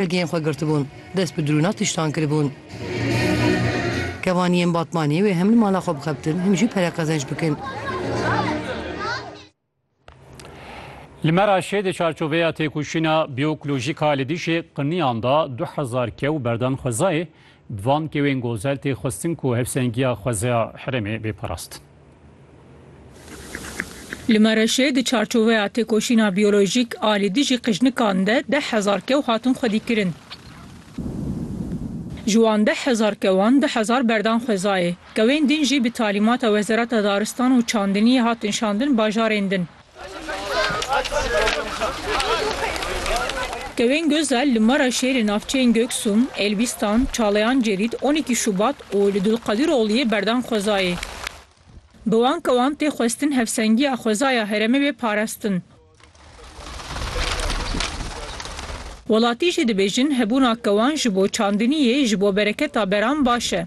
Belgeyên xwe girtibûn, dest bi drûna tiştan kiribûn. Kevaniyên Batmanê wê hem li mala xwe bixebtin hem jî pere qezenç bikin. Li Meraşê di çarçoveya têkoşîna bioekolojîk a li dijî qiniyan de du hezar kew berdane xwezayê, bi van kewên gozel tê xwestin ku hevsengiya xwezaya herêmê bê parastin. Li Mereşê di çarçoveya têkoşîna biyolojîk a li dijî qijnikan de deh hezar kew hatin xwedîkirin. Ji wan deh hezar kewan du hezar berdan xwezayê. Kewên din jî bi talîmata Wezareta Daristan û Çandiniyê hatin şandin bajarên din. Tewên Gözel li Maraşê li navçeyên Göksun, Elbistan, Çalayan Cerit, on îki Şubat û li Dulqadirogliyê berdan xwezayê. Bi wan kewan tê xwestin hevsengiya xwezaya herêmê bê parastin. Welatî jî dibêjin hebûna kewan ji bo çandiniyê, ji bo bereketa beran baş e.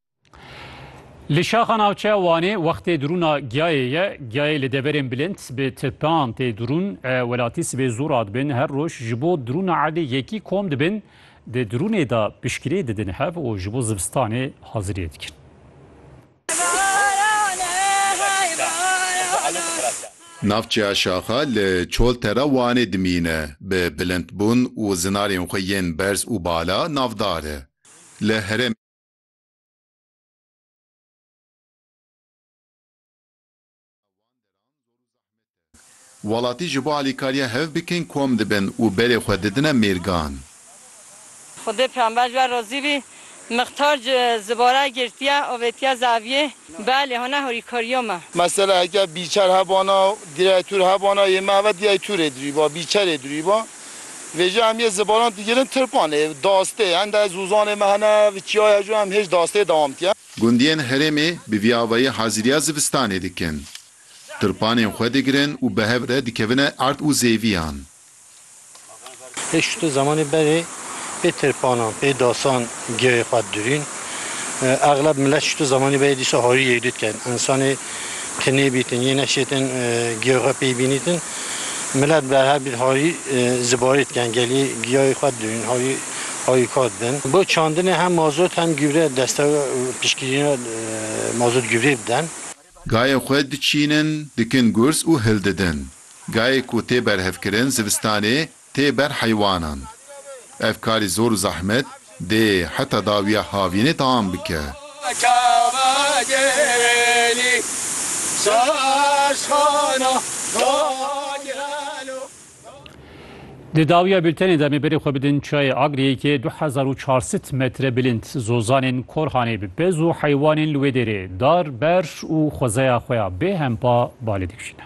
Li şaxa navçeya Wanê wextê dirûna giyayê ye. Giyayê li deverên bilind bi tipan tê dirûn. E, welatî sibê zû radibin. Her roj ji bo dirûna erdê yekî kom dibin. Di dirûnê de pişkirê didin hev û ji bo zivistanê haziriyê dikin. Navçeya Şaxa li Çoltera Wanê dimîne. Bi bilindbûn û zinarên xwe yên berz û bala navdar e. Li herêmê Welatî ji bo alîkariya hev bikin kom dibin û berê xwe didine mêrgan. Xwedê Pêxember ji we razî bî, Mixtar ji Zibara girtiye û vetiye zaviyê, Belê, hona hurîkariya me. Mesela heke bîçer hebana, direyê tûr hebana, yê me heve direyê tûrê dirûyba, bîçerê dirûyba. Vê jî em yê zibanan digirin Tirkwanê, dastê, hende zûzanê me hene, vi çiyaya jû em hêj dastê dewam dikin. Gundiyên herêmê bi vî avayî hazîriya zivistanê dikin. Tirpanên xwe digirin û bi hev re dikevine erd û zêviyan. Pê şûtê zemanê berê pê tirpanan, pê dasan Gêyê xwe dirîn. Exleb milet ji tu zemanî beyê dîsa harî yekdî dikin. Însanê ki nêbîtin yê neşêtin gêyê xwe pey bînîtin. Milet berhev bît harî ji barê dikin. Gelî gêyê xwe dirîn harî harîkar dibin. Bo çandinê hem mazot hem gîvre deste piştgirîna mazot gîvrê bidin. Gayê xwe diçînin, dikin gurs û hildidin. Gayê ku tê berhevkirin zivistanê tê ber heywanan. Ev karî zor û zehmet dê heta dawiya havînê tam bike. Di dawiya bûltenê de em ê berê xwe bidin çiyayê Agriyêkê du hezar û çar sed metre bilind. Zozanên Korhanê bi pez û heywanên li wê dêrê dar, ber û xwezeya xwe ya bêhempa ba lê dikişîne.